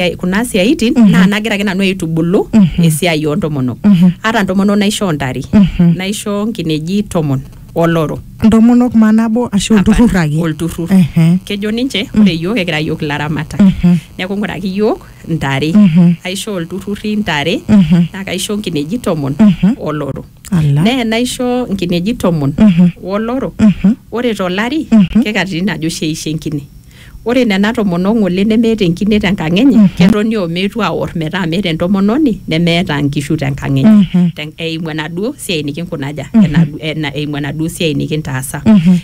eh, kuna siaitin Mhm. naa nagira ake nanu aitubulu Mhm. esiai oontomonok Mhm. ata ntomonok naishoo ntare Mhm. naishoo nkineji tomon oloro ntomonok maa nabo ashu olturrur Hapana, ake olturrur Ehe. kejo ninche ore yiok ekira yiok ilaramatak Mhm. neeku ng'uraki yiok ntare Mhm. aisho olturruri ntare Mhm. naa kaisho nkineji tomon Mhm. oloro Ala. nee naisho nkineji tomon Mhm. woloro Mhm. ore tolari Mhm. kekatitin ajo sheishe enkine Ore nena tomonok ng'ole nemeeta enkine te nkang enye, ketoni o meetu aor metaa meeta entomononi nemeeta nkishu te nkang enye. Te eimu enaduo siai nikinkunaja, ena eimu enaduo siai nikintaasa.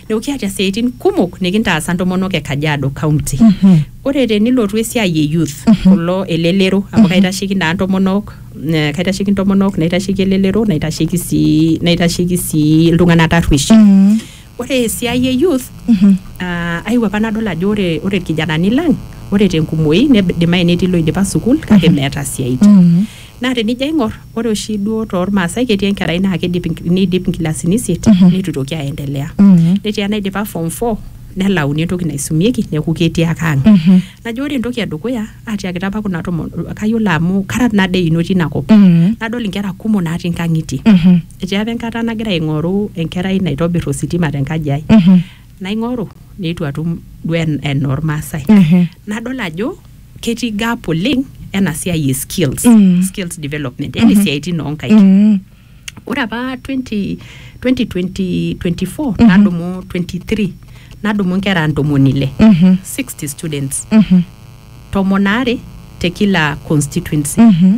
Neeku kiata isiaitin kumok nikintaasa ntomonok e Kajiado County. Ore tenilotu esiai e youth, kulo elelero amu kaitasheki naa ntomonok, kaitasheki ntomonok, naitasheki elelero, naitasheki sii naitasheki sii iltung'anak tarruesh Ore esiai e youth Mhm. ah, aewuo apa nadol ajo ore ore irkijanani lang ore tenkumoi neidimayu netii loidipa sukuul kake meeta siaitin. Mhm. Naa tenijo aing'or ore oshi duo tormaasai ketii enkerai naa keidip nk- neidip nkilasini isiet Mhm. neitu itoki aendelea. Mhm. Netii enaidipa form four nelauni entoki naisumieki neeku ketii ake ang. Mhm. Najo ore entoki edukuya atiakita apa kuna tomonok kayiolo amu kara nade eino tina kop. Mhm. Nadol inkera kumok natii nkang'itie. Mhm. Etii apa enkata nagira aing'oru enkerai naitobir ositima te nkaji ai. Naing'oru neitu atum duo en- enaa Ormaasai. Ehe. Nadol ajo ketii gap oleng ena siai e skills, Mm. skills development, yani isiaitin oo nkaik. Mm. Ore apa 20, 2020, 24 nadumu 23 nadumu nkera ntomoni ile Mhm. 60 students Mhm. tomon aare te kila constituency Mhm.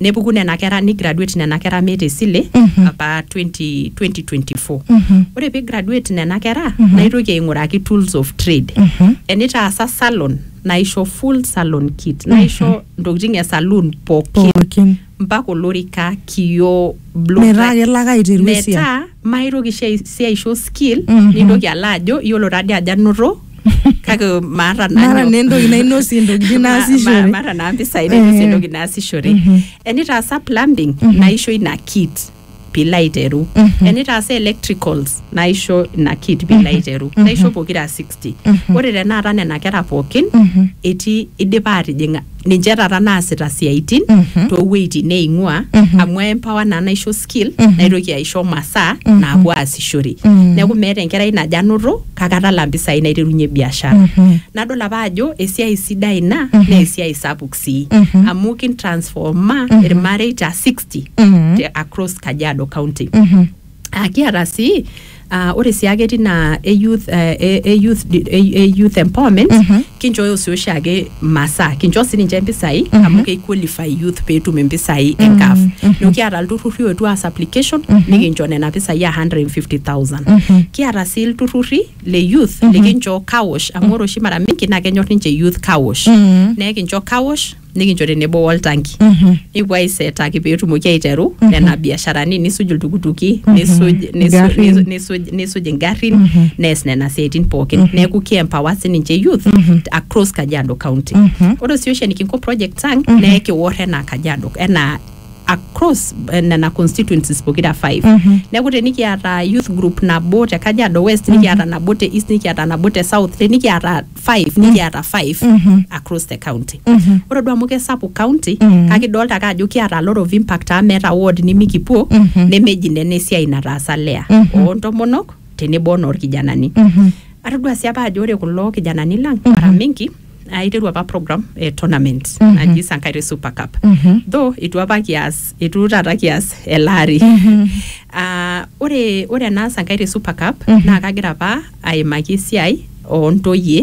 nepuku nena kera nigraduate nena kera meeta esile apa 20, 2024 ore pee graduate nena kera naitoki aing'uraki tools of trade enitaasa salon naisho full salon kit naisho ntokitin e saloon pookin Pookin. mpaka olorika kioo blow Metaa dry. kelo ake aiteru esiai. metaa maitoki shi ai- si aisho skill nintoki alo ajo iyiolo tadi ajo anoto kake maata nanu- Maata naa entoki nainosie intokitin Ma- ma- naasishore. maata naa mpisai nainosie Eh. entoki naasishore Mhm. enitaasa plumbing naisho ina kit pilo aiteru Mhm. enitaasa electricals naisho ina kit pilo aiteru naisho pokira 60 ore tenaata nena kera pookin Mhm. etii idipa atijing'a ninche taata naasita siaitin Mhm. toowueitin neing'ua Mhm. amu empower naa naisho skill Mhm. naitoki aisho masaa Mhm. naapuo aasishore Mhm. neeku meeta enkerai najo anoto kake atala mpisai naiterunye biashara Mhm. nadol apa ajo esiai sidai ina Mhm. naa esiai sapuk sii Mhm. amu kintransforma Mhm. irmareita 60 Mhm. te across kajiado county Mhm. Ah, kiata sii ah, ore sii ake tina e youth, eh, e- e youth, di- e- e youth empowerment Mhm. kinchooyo sii oshiake masaa kinchoo sii ninche mpisai Mhm. amu keiqualify youth peetum impisai Mhm, enkaf mhm. neeku kiata ilturrurri oetuo aas application Mhm. nikincho nena pisai a 150000 Mhm. kiata sii ilturrurri le youth Mhm. likinchoo kawosh amu ore oshi mara mingi naa kenyor ninche youth kawosh Mhm. neekincho kawosh nikincho tenebo woltanki Mhm. nikipuo aisetaki peetumoki aiteru nena biasharani nisuj iltukutuki nisuj nisuj- Ingarrin. nisu- nisuj nisuj ingarrin nees nena siaitin pookin neeku ki empower sininche youth across kajiado county ore sii oshi enikinko project sang naa ekiwor enaa kajiado enaa across eh, nena constituencies pokira five neeku tenikiata youth group nabo te kajiado west nikiata nabo te east nikiata nabo te south tenikiata five nikiata five across the county ore duo amu kesapuk county kake idolta ake ajo kiata a lot of impact amu meeta ward nimikipuo nemeji nena esiai nataasa lea ontomonok tenebo onorkijanani atodua sii apa ajo ore kulo kijanani lang mara mingi aiteru apa program e tournament naji Sankaire Super Cup though itu apa kias etu taata kias ele ari Ah, ore ore enaas enkai te super cup naa kagira apa aimaki esiai oontoyie